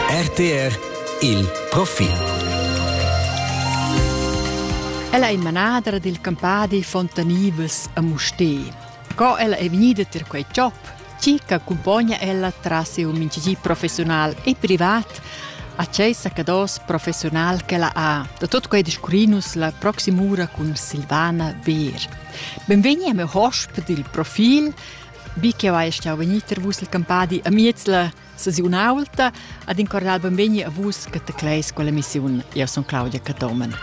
RTR il profil. Ella è manadra dil campadi Fontanivas a Mustè. Co ella è vegnida per quei job, chi che accompagna ella tras un minchigi professional e privat a Ceisa Cados professional che la ha. Da tot quei discurinus la proximura cun Silvana Beer. Benvegni a me hosp dil profil Bi ch'jeu hai stau vegnir tier vus il campadi amiez la staziun aulta ad in cordial benvegni a vus che tecleis quella missiun. Jeu sun Claudia Catomen.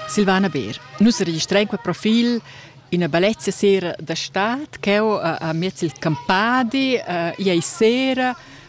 Silvana Beer. Nus registrain quel profil ina bellezia sera da stad ch'eu a, a miez il campadi, uh, iei sera,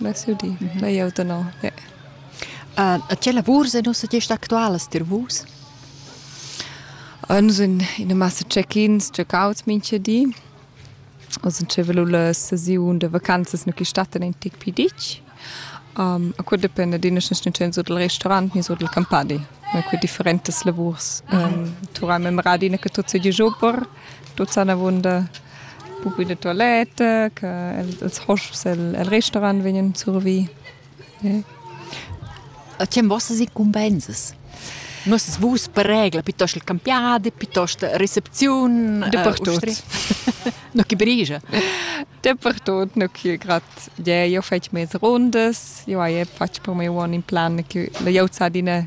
Bess jeu di. Na, jeu tenor, ja. E tge lavurs ein ussa gest actualas tier vus? Uns in ina massa check-ins, check-outs mincha di. Oz in tschevelu la sesiun da vacanzas nu chi stattan in tic pi ditg. Um, a quel dependa d'ina schenstunziun sur dal restaurant ni sur dal campadi. Ma que differentas lavurs. Um, turai memra adina che tut seigi super. Tuot san avuonda pupi da tualetta che el els hosps e'l e'l restaurant vegnan survi. A tgem vossas incumbenzas? Nossas vus per regla piuttost il campiadi, piuttost recepziun, Dapertut. No chi brigia. Dapertut, no chi grad ie, io fetsch mez rundas, io hai fatg per me uonn in plan che l'ho già adina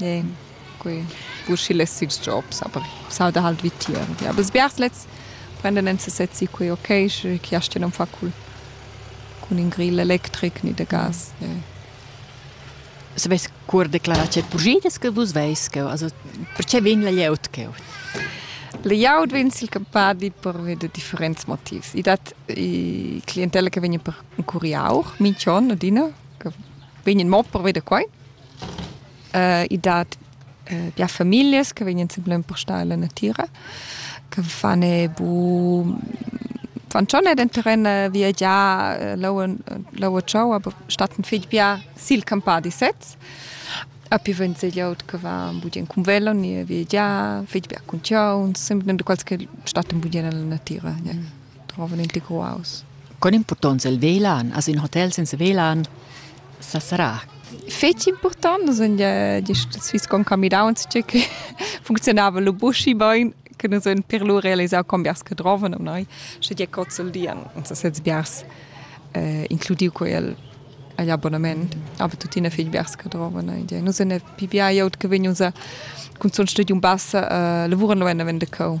Ie, quei uschi less ils jobs, aber s'auda halt vitier. Ja, aber sbiars lets prenden en sesez si quei okay, sche chi astga non far cul cun in grill electric ni de gas. Ie. As vess cur declarà che pugidas che vus veis cheu, also perche vegn la glieud cheu? Layout vegn silcampadi pervi da differents motivs. I dat i clientella che vegn per curiau, minch'on adina, che vegn mo pervi da quai. i dat bia famiglias che vegnan sempre empustar la natira, che fan bu fan schon ed entochen viagiar leu tschau, aber statten fetg bia sil campadi sez. Api vegn segliaut che va budien cun velo ni viagiar, fetg bia cun tiauns, sempre quels che statten budien alla natira. Ja. Mm. drovan integraus. Con impurtonza il velan, as in hotel senza velan? Sa sarà. Feci important, sind ja die Swiss con Camirauns, che funzionava lo buschi bain, che nous en per lo realisar con biars che drovan am noi, sche die cozzel dian, uns sez biars eh, includiu quel agli abbonamento. Aber tuttina fich biars che drovan. Nus ne pipiai aut che vegn unser cun son studium bassa uh, lavura no en vende cau.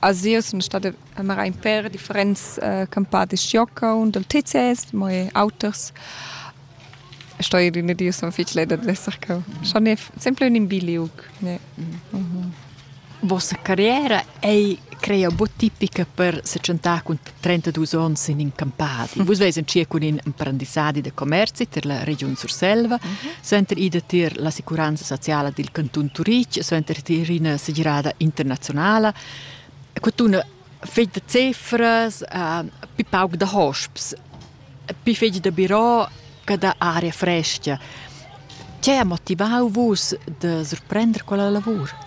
A Zio sun stada mara ün per differents campadis jockau dal TCS, mo eir auters. E sto ir üna di sun fich leda d'esser cau. Schon è sempre ün bi liug. Ne. Vossa carriera ei creia buc tipica per secentar cun 32 onns in in campadi. Vus veis entschiet cun in emprendissadi da commerzi ter la regiun Surselva, mm -hmm. center ida tier l'assicuranza sociala dil canton Turic, center tier ina segirada internazionala. Quatuna fegl da cefras, uh, pi pauc da hosps, pi fegl da birò che da aria fresca. Che ha motivau vus da surprender quella lavur?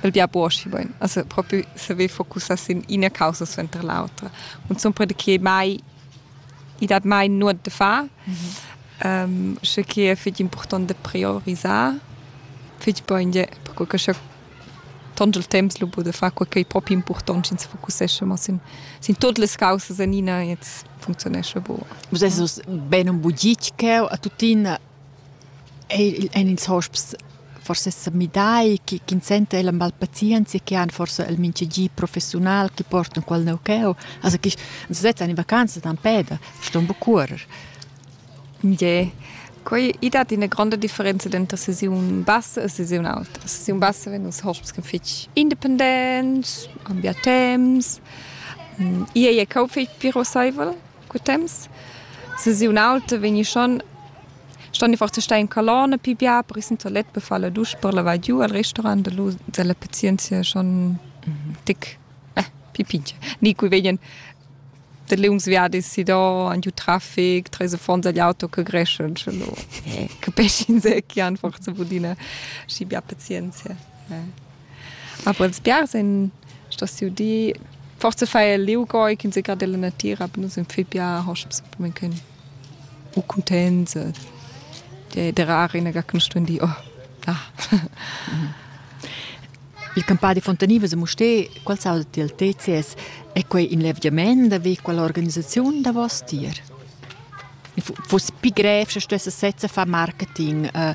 El di apo aschi bain, as propi saver focussar sin ina causa suenter l'autra. Cunzunt perche che mai i dat mai nuot da far, um, sche che è fich important da priorisar fich bain gie, perque che scha tont il temps lu bod da far quai ch'ei propi impurtont, sch'ins focussescha mo sin, sin tuot las causas en ina, jetzt funktionescha bu. Vus esses ben un bugic cheu a tuttina Eir ein ils hosps forsa sa midai che ch'ins senta el amb alla pazienzia che han forsa el mincha gi professiunal chi portan qualnov cheu. Also chi ans vezzan in vacanzas empè da ston buca cuorrer. Ie. Quei i dat ina gronda differenza denter sesiun bassa e sesiun auta. Sesiun bassa vegn ils hosps che fetg independents, ambiar temps. Ie ei cheu fetg piroseivel. cu temps sesiun auta vegni schon ston forse stei in colonna pi bia per in toilette per far la dusche per lavar giu al restaurant da lu della pazienzia schon tic eh, pi pinche ni cui vegien de lungs viadis si do an giu traffic tre fonds agli auto che greschen ce lo eh, capesci in se che han forse budina schi bia pazienzia eh. Aber els biars ein stos siu di forse fai el liu goi ch'ins seca della natira, aber nus in fi bia hosps men können u contents de der arena ga kun stundi oh da Il campadi Fontaniva a Mustè, qual sa del TCS, è quei in levgiament da vi quella organisazione da vos tier? Fus pi grev se stesse sezza fa marketing, uh,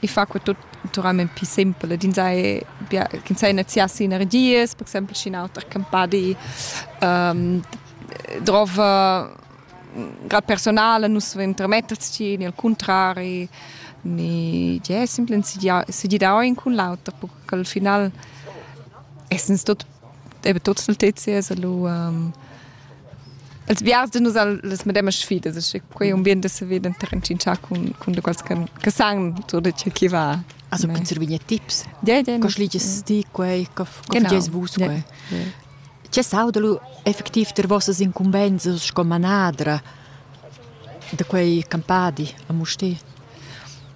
i fa que tut naturalment pli simpel ed ins sai bia ch'ins sai neziar sinergias per exempel sc'in auter campadi um, drov grad personale nus intermetterts ci ni al contrari ni je simplen si di da in cun l'auter per che al final essens tot eben tots nel TCS allo um, els vias de nus al les medemma sfidas, e quei un bien de se veden terrencinciar cun cun de quals che che san tutto ciò che va. Also per servire tips. Ja, ja. Cosa liges ti quei? Cosa facis vus quei? C'è saudalu effettiv ter vossas incumbenses sco manadra de quei campadi a Musti?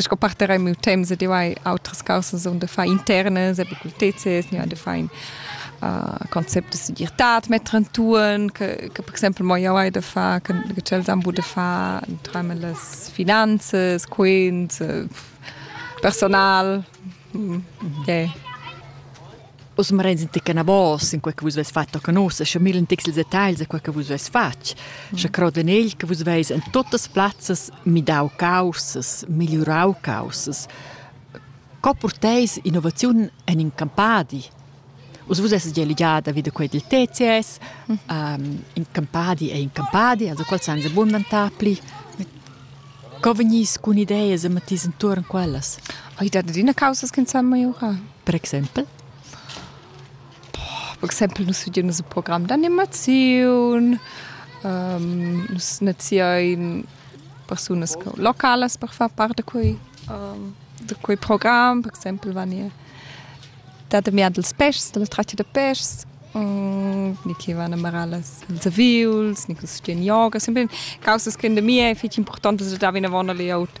Sco parter ei miu temps ed jeu hai autras caussas onn da far internas, apicultezas, jeu hai da far in uh, concept da segirtad metter entuorn, che, che per exempel mo jeu hai da far, che, che tschels han bu da far entreimen las finanzas, quint, uh, personal. Mm, yeah. Oz marens ti canabos in quei che vus veis fatg a nus, sche millen tics ils detagls a quei che vus veis fatg, sche crod en egl che vus veis en tuttas plazzas midau causas, migliurau causas. Co porteis innovaziun en in campadi? Us vus esses gia ligada vid quei dil TCS, um, in campadi è in campadi, also quel san abundantar pli. Co vegnis cun ideas e mettis entuorn quellas? Ai dat adina causas che san maiurar. Per exempel? Per exempel nus studein nus il program d'animaziun, nus naziein persunas localas per far part da quei, da quei program, per exempel vegni da damiar dils pèschs, dalla tratga da pèschs, ni che van a marar las, ils aviuls, ni che studein yoga, sempre causas che da mi è fetg importantas da dar vinavon agl aut.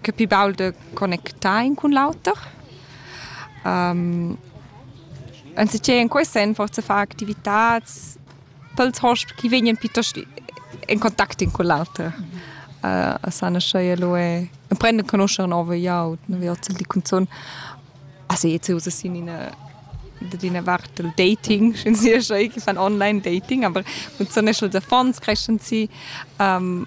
che pli baul de connectar in cun l'auter. Um, anziché in quest senn forse far activitats pels hosp chi vegnan piuttost in contact in con l'auter. Uh, a sana schei lo e prende conoscere nove iaut, ne viozzel di cunzun. Also jetzt usa sin in d'ina vart del dating, schön sie schon ich fan online dating, aber und so ne schon der Fonds creschen sie ähm,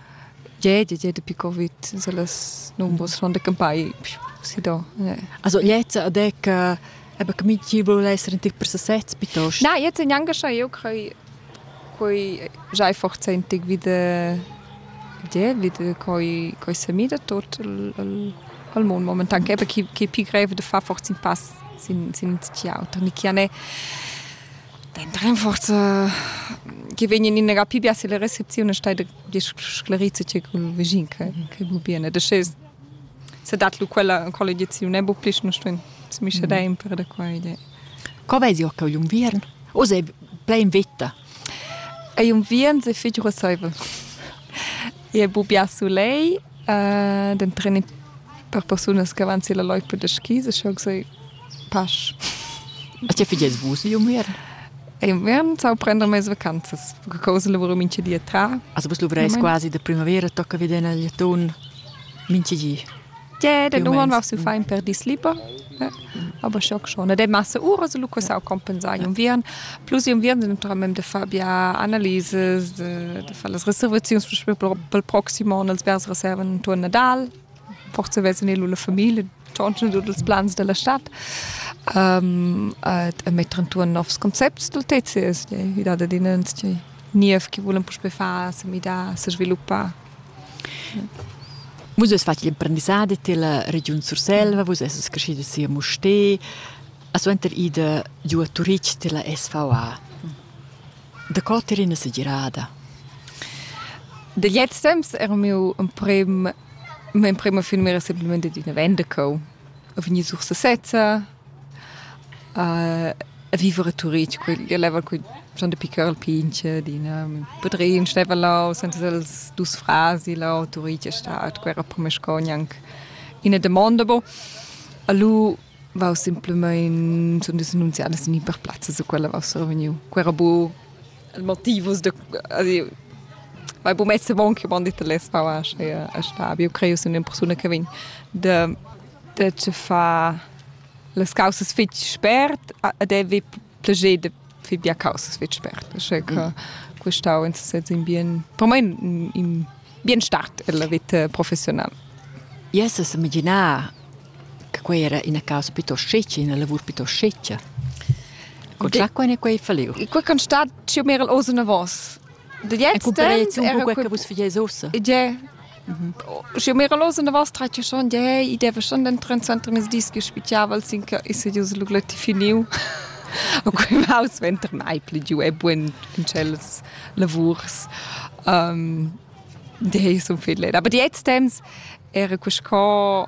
Gliè, gliè, gliè dapi Covid sun las numbers sun campai si do. Also jetzt ad ec eben che minchün voul esser in tic per sesez piuttost? Na, jetzt engaschà eu crei quai già forzaintic vi da gliè, vi da quai quai semi da tuot al al al mund momentan, eben chi chi pi grev da far fors in pass sin sin ün tgil auter, ni chi al n'è Dent rinforza che vegnan in era pli bia se le recepzione stai sclerizza che col visin che che bu bene de sche se dat lu quella collegiazione bu pli non stuen mi sche sempre da qua idea Co vesi occa un unviern? O sei plein vita? Ei unviern se figura saiva. E bu bia sulei Den treni per persunas che van silla loipa da skis e schau sei pasch. A tge figies vus inviern? Inviern sau prender mes vacanzas. Cosa lavura mincha di a tra. Also vus luvreis quasi da primavera, tocca veder nel atun mincha di. Ie, den uman va su fein per dis liber. aber schock schon de masse ura se lu cosau compensai un vian plus un vian naturalment de far bia analyses de, de far las reservazions pel proximo on els vers reserven intuorn Nadal forse vessen e lu la familie tschonschen tut els plans della stadt um, e, e metter intuorn novs concepts del TCS die, wie da den niev che volen puspe far, se mi da, se sviluppar Vus avais fatg l'imprendissadi til regiun Surselva, vus essas creschidas si a Mustér, a suenter ida giu a Turitg til SVA. Da co t'er ina segirada? Da jetzt temps era miu emprem, mia emprema finmira semplament d'üna venda co. Ho vegni sur sesezza, A viver a Turitg, quel leva cun schon dapi ch'el pintga adina. Mio padrin steva là senza els dus frars là a Turitg a star. Quei era per me sco gnanc ina damonda. Bo. Alu vau simplamain sun dus annunziada sin in per plazzas a quella vau survegniu. Quei era bu il motivus da vai bu messa avon che io m'han detto lez va a star. Io creo sun ina persuna che vegn da dad far las causas fitg spert ed avevi plascher da far bia causas fitg spert. Che mm. questau in sez in bien, per me in, in bien start della vita professionale. Yes, es imaginar che quei era ina causa piuttosto sceccia, una lavur piuttosto sceccia. Con già quei ne quei falliu. Quei kan stat più mer als una vos. De jetzt un po' che vus figais ossa. Ja, Schi mira los in da vas tratg schon de i deve schon den 23 mis dis che spichiaval sin che is jus lugleti finiu. A quei maus venter mai pli giu e buin in tschels lavurs. Um, de sun fidlet. Aber die jetzt temps era quest co